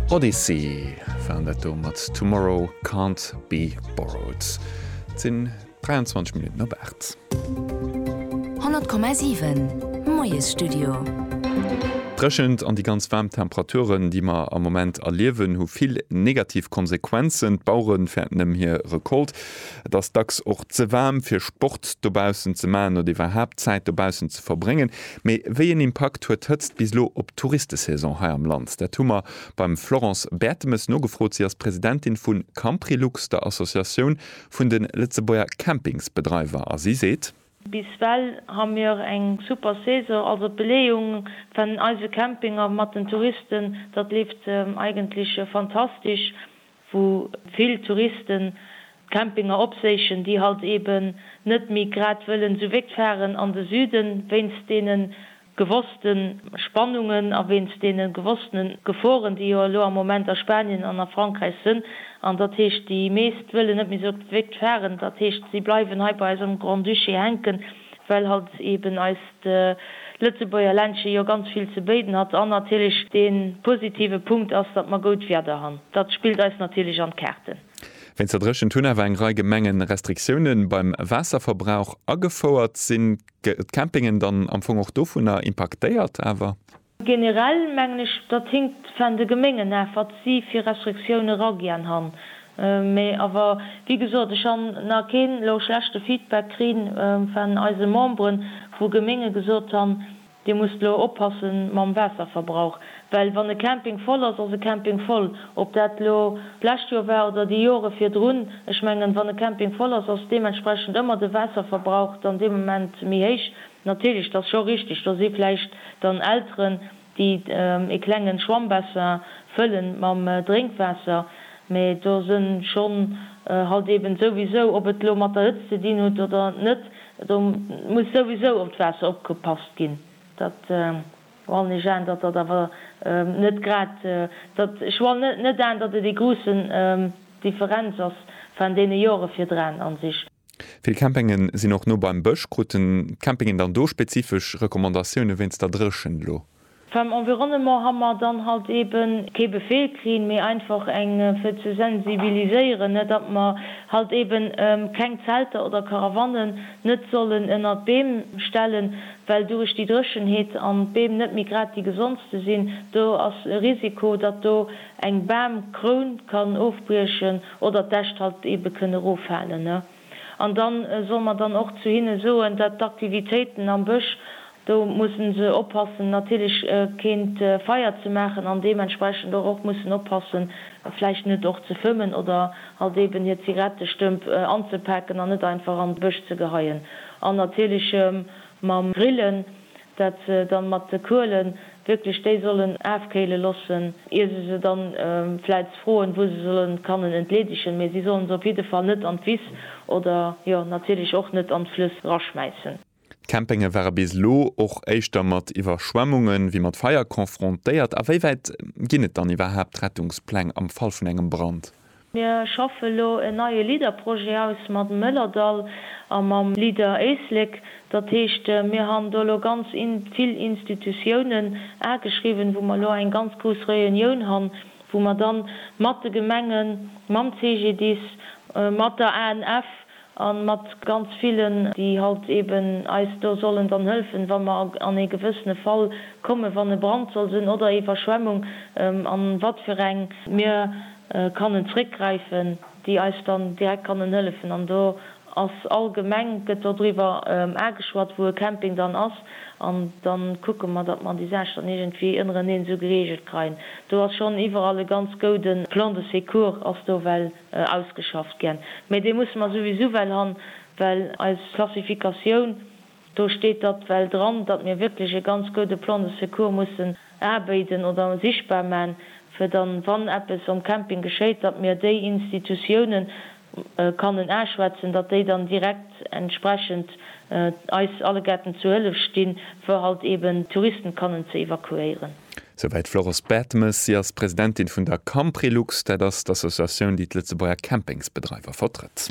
Odyssey waren dat do mat Tomorrow Can't Be Borrowed. Et sinn 23 Minutten op 8. 100,7 Moiesstudio. D'Dréchent an déi ganz waarm Temperaturen, déi mer am Moment erliewen, hu vill negativ Konsequenzen. D'Bauere fäerten ëm hir Recolte. Et ass dacks och ze waarm, fir Sport dobaussen ze maachen oder iwwerhaapt Zäit dobaussen ze verbréngen. Mee wéi een Impakt huet d'Hëtzt bis elo op d'Touristesaison hei am Land? Dat hu mer beim Florence Bertemes nogefrot. Si ass Presidentin vu Camprilux, der Associatioun vun de Lëtzebuerger Campingsbedreiwer a si seet. Bis well ha mir eng super Saison, also d'Beleeung van eise Campinger mat den Touristen, datt leeft eigentlech fantastisch. wou vill Touristen d'Campinger opséichen, déi halt eben net méi grad wëllen esou wégt fahren an de Süden, wéinst deene gewosste Spannungen a wéinst deene gewosstene Geforen, déi jo elo am Moment a Spanien an a Frankräich sënn. An dat heescht, déi meescht wëllen net méi esou wégt fahren. Dat heescht, si bleiwen hei bei eis am Grand-Duché hänken. well halt eben eist Lëtzebuerger Ländche jo ganz vill ze béiden hat an natierlech dee positive Punkt ass, datt mer goud Wieder han. Datt spillt eis natierlech an d'Kaarten. Wéinst der Dréchent hunn awer eng Rei Gemenge Restriktioune beim Waasserverbrauch agefouert. Sinn d'Campingen dann am Fong och dovunner impaktéiert awer? Generell mengen ech, datt hinkt van de Geméngen aaf, watt sie fir Restriktioune ra gern han. Mee awer, wie gesoot, ech han na keen lo schlechte Feedback krien van eise Memberen, wou Geménge gesoot han, dir musst lo oppassen mam Waasserverbrauch, well wann e Camping voll ass, ass e Camping voll, op daat lo d'lescht Joer war oder déi Joere virdrun. Ech mengen, wann e Camping voll ass, ass deementsprechend ëmmer de Waasserverbrauch dann dee Moment méi héich. Natierlech, et ass scho richteg, do si vläicht dann Elteren, déi e klengen Schwammbassin fëlle mam Drénkwaasser, mä do se schonn halt eben souwisou, ob et elo mat der Hëtzt ze dinn hutt oder net, do muss souwisou op d'Waasser opgepasst ginn. Dat wann ech an, datt dat awer net grad, dat ech wann net an, datt et ee gruussen Differenz ass van deene Jore virdran an sich. Vill Campinge sinn och no beim Bësch. Kruten d'Campingen dann do spezifesch Recommandatioune wéinst der Dréchent elo? Beim Environnement ha mer dann halt eben kee Befehl kritt, mee einfach eng fir ze sensibiliséieren, ne, datt mer halt eben keng Zelter oder Karawannen net sollen ënnert d'Beem stellen, well duerch déi Dréchenheet an d'Beem net méi grad déi gesondste sinn, do ass e Risiko, datt do eng Bamkroun kann ofbriechen. oder d'Äscht halt ebe kënne eroffalen, ne, an da solle mer dann och zu hinne soen, dat d'Aktivitéiten am Bësch, do musse se oppassen natierlech keen Feier ze maachen an deementsprechend och och mussen oppassen vläicht net och ze fëmmen oder halt eben hir Zigarettestëmp anzepaken an net einfach an de Bësch ze geheien an natierlech mam Grillen. dat se dann mat de Kuelen wierklech déi sollen aafkéilen lossen ier se se dann vläits froen wou se sollen kannen entleedegen, mee sie sollen se op jidde Fall net an d'Wiss oder jo natierlech och net an d'Flëss raschmäissen. D'Campinge ware bis elo och éischter mat Iwwerschwemmunge wéi mat Feier confrontéiert. A wéi wäit ginn et dann iwwerhaapt Rettungspläng am Fall vun engem Brand? Mir schaffe elo en neie LEADER-Projet aus mat dem Mëllerdall a mam LEADER Éislek. Dat heescht, mir han do elo ganz vill Institutiounen ageschriwwen, wou mer elo eng ganz grouss Réunioun han, wou mer dann mat de Gemengen, mam CGDIS, mat der ANF, A mat ganz villen, déi halt eben eis do sollen dann hëlfen, wa mer an ee gewëssene Fall kommen, wann e Brand soll sinn oder Iwwerschwemmung, an wat fir eng. Mir kannen zréckgräifen, déi eis dann direkt kannen hëllefen. An do ass all Gemeng, gëtt do driwwer ageschwat, wou e Camping dann ass. An da kucke mer, datt mer déi Saach dann iergendwéi ënnereneen esou gereegelt kreien. Do ass schonn iwwerall e ganz gouden Plan de secours ass do, well. Ausgeschafft gän. Mee dee musse mer souwisou well han, well eis Klassifikatioun, do steet datt well dran, datt mir wierklech e ganz goude Plan de secours mussen abéiden oder sichtbar man, fir dann, wann eppes om Camping geschéit, datt mir déi Institutiounen kannen aschwätzen, datt déi dann direkt entsprechend eis allegerten zu Hëllef stinn, fir halt eben d'Touristen kannen ze evakuéieren. Souwäit d'Florence Bertemes. Si ass Presidentin vun der Camprilux, dat ass d'Associatioun, déi d'Lëtzebuerger Campingsbedreiwer vertrëtt.